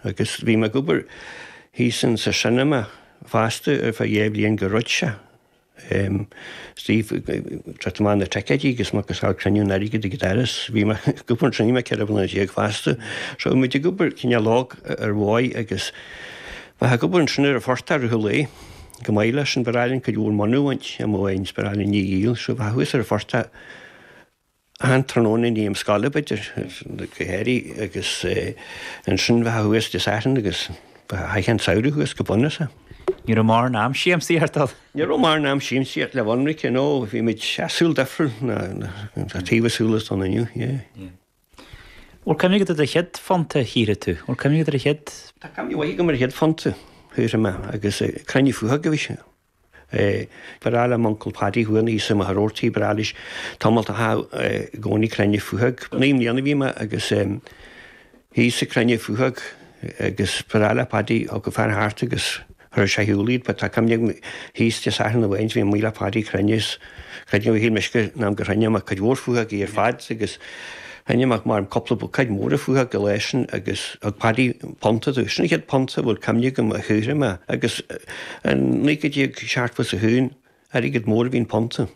Agus bhí mé ag obair thíos in sa cineama fosta ar feadh dhá bhliain go rud sea. Em. Sea, tabhairt amach na ticéidí agus muid ag fáil cruinniú an airgid ag an doras. Bhí mé ag obair ansin mé ceithre bliana déag fosta. So muid ag obair cineál óg ar ndóigh agus bheifeá ag obair ansin ar an phortach a raibh lae go maith leis an bhforáil an cuid mhór mónadh a bhaint amuigh in sa bhforáil an ní dhíol. So bheifeá thuas ar an phortach. An tráthnóna i ndiaidh na scoile b'fhéidir, go háirithe agus ansin bheifeá thuas Dé Sathairn agus chaithfeá an samhradh thuas go bunúsach. Ní raibh mórán am siamsaíochta. Ní raibh mórán am siamsaíochta le bheith ionraice you know, bhí muid a saol difriúil ná tá taobh leis an saol atá ann inniu yeah. Bhfuil cuimhne agat ar do chéad phunt a shaothraigh tú? Bhfuil cuimhne agat ar an chéad. Tá cuimhne mhaith agam ar an chéad phunt a shaothraigh mé agus ag cruinniú faochóg a bhí sé. Bar eile m'uncail Paddy a bhuann Íosa i mo tharórtaí, bar eile is tamall do thá i gcónaí clainne fuathag. Naoi mbliana a bhí mé agus Íosa clainne fuathag agus bar eile Paddy thug a fear thart agus chuir sé a shiúl iad. Ba tá cuimhne agam thíos de Satharn amháin bhí an Maoileach Paddy clainne is. Cruinniú shíl mise an t-am gur chruinnigh mé cuid mhór faochógaí ar fad agus chruinnigh mé maram cupla buicéad móra faochóg an lá sin agus thug Paddy punta domh. Sin an chéad punta a bhfuil cuimhne agam a shaothraigh mé agus in naoi déag seachtó is a haon airgead mór a bhí in punta.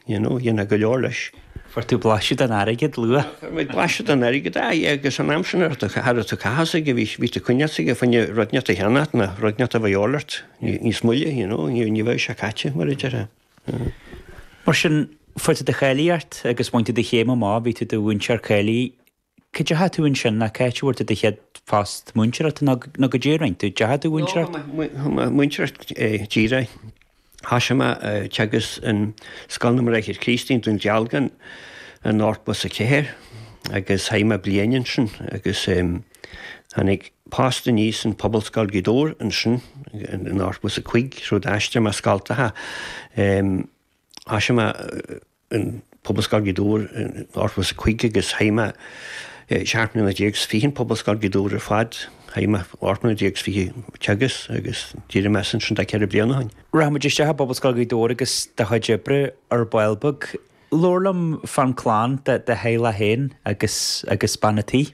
You know, dhéanfá go leor leis. Fuair tú blaiseadh den airgead luath? Fuair muid blaiseadh den airgead, a aye, agus an t-am sin cha raibh tú ag caitheamh airgid bhí bhí tú ag coinneáil airgid fá choinne rud inteacht a cheannacht nó rud inteacht a bheadh a dhíobháil ort níos moille, you know, ní bheadh sé caite, mar a deir sé. Mar sin, fuair tú do cháilíocht agus bhain tú do chéim amach, bhí tú i do mhúinteoir cáilithe. Cá deachaigh tú ansin nó cá háit a bhfuair tú do chéad phost múinteoireachta nó nó caidé a rinn tú, deachaigh tú a mhúinteoireacht? Chuaigh mé, chuaigh mé a mhúinteoireacht díreach. Thoisigh mé a teagasc in Scoil na mBráithre Críostaí i nDún Dealgan in ochtó is a ceathair agus chaith mé bliain ansin agus eh, Tháinig post aníos in Pobalscoil Ghaoth Dobhair ansin in ochtó is a cúig, so d'aistrigh mé scoltacha. Thoisigh mé in Pobalscoil Ghaoth Dobhair in ochtó is a cúig agus chaith mé seacht mbliana déag 's fiche in Pobalscoil Ghaoth Dobhair ar fad. Chaith mé ocht mbliana déag 's fiche ag teagasc agus d'éirigh mé as ansin tá ceithre bliana ó shin. Rachaidh muid isteach i bPobalscoil Ghaoth Dobhair agus do chuid oibre ar ball beag. Labhair liom fán clann, do theaghlach féin agus bean a' tí.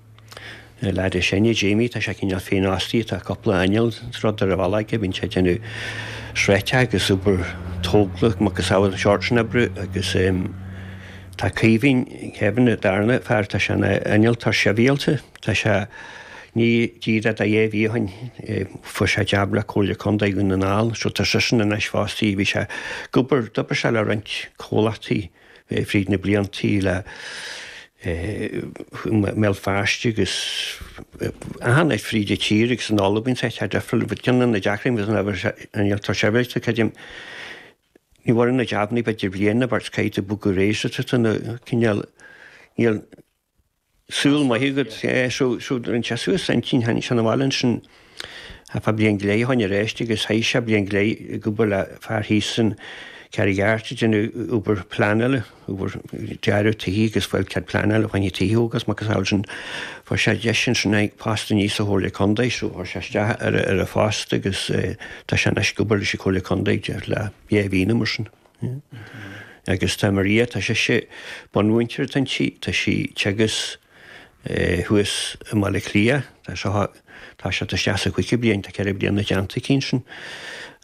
Lad is sine, Jamie, tá sé cineál féinfhostaithe, tá cúpla inneall rudaí ar an bhealach aige, bíonn sé ag déanamh sráideacha agus obair tógála, macasamhail an seort sin oibre, agus tá Caoimhín, Kevin, an darna fear, tá sé ina innealtóir sibhialta, tá sé i ndiaidh díreach tá dhá mhí ó shin, fuair sé jab le Comhairle Contae Dhún na nGall, so tá seisean anois fostaithe, bhí sé ag obair, d'obair sé le roinnt comhlachtaí, fríd na bliantaí le i mBéal Feirste agus achan áit fríd an tír agus in Albain is áit difriúil but ceann de na deacraí agus ná bhfuil sé an tá sé bhfuil tú creidim ní bhfuil na jobannaí b'fhéidir bhliana bhar caid a bug go rééis tú na cineál níl Súil maith agat. Shuigh an sé suas annsin, tháinig sé na bhaile annsin ar feadh bliain go leith a tháinig aríst agus chaith sé bliain go leith ag obair le fear thíos san Carraig Airt ag déanamh obair pleanála, obair dearadh tighe agus fáil cead pleanála fá choinne tighe agus a macasamhail sin. Fuair sé deis annsin ar post aníos sa Chomhairle Condae so chuir sé isteach ar an phost agus tá sé anois ag obair leis an Chomhairle Condae ag déanamh le dhá mhí nó mar sin. Agus tá Maria, tá sé sé bunmhúinteoir atá inti, tá sí ag teagasc thuas i mBaile Átha Cliath, tá sé thá, tá sé tá sí sa chúigiú bliain, tá ceithre bliana déanta aici ansin.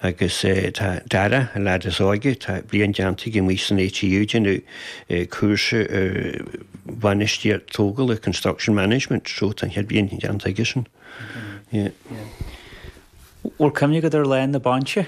Agus tá Dara, an leaid is óige, tá bliain déanta aige amuigh san ATU, ag déanamh cúrsa ar bhainistíocht tógála, construction management, so tá an chéad bhliain déanta aigesan. Bhfuil cuimhne agat ar lá na bainise?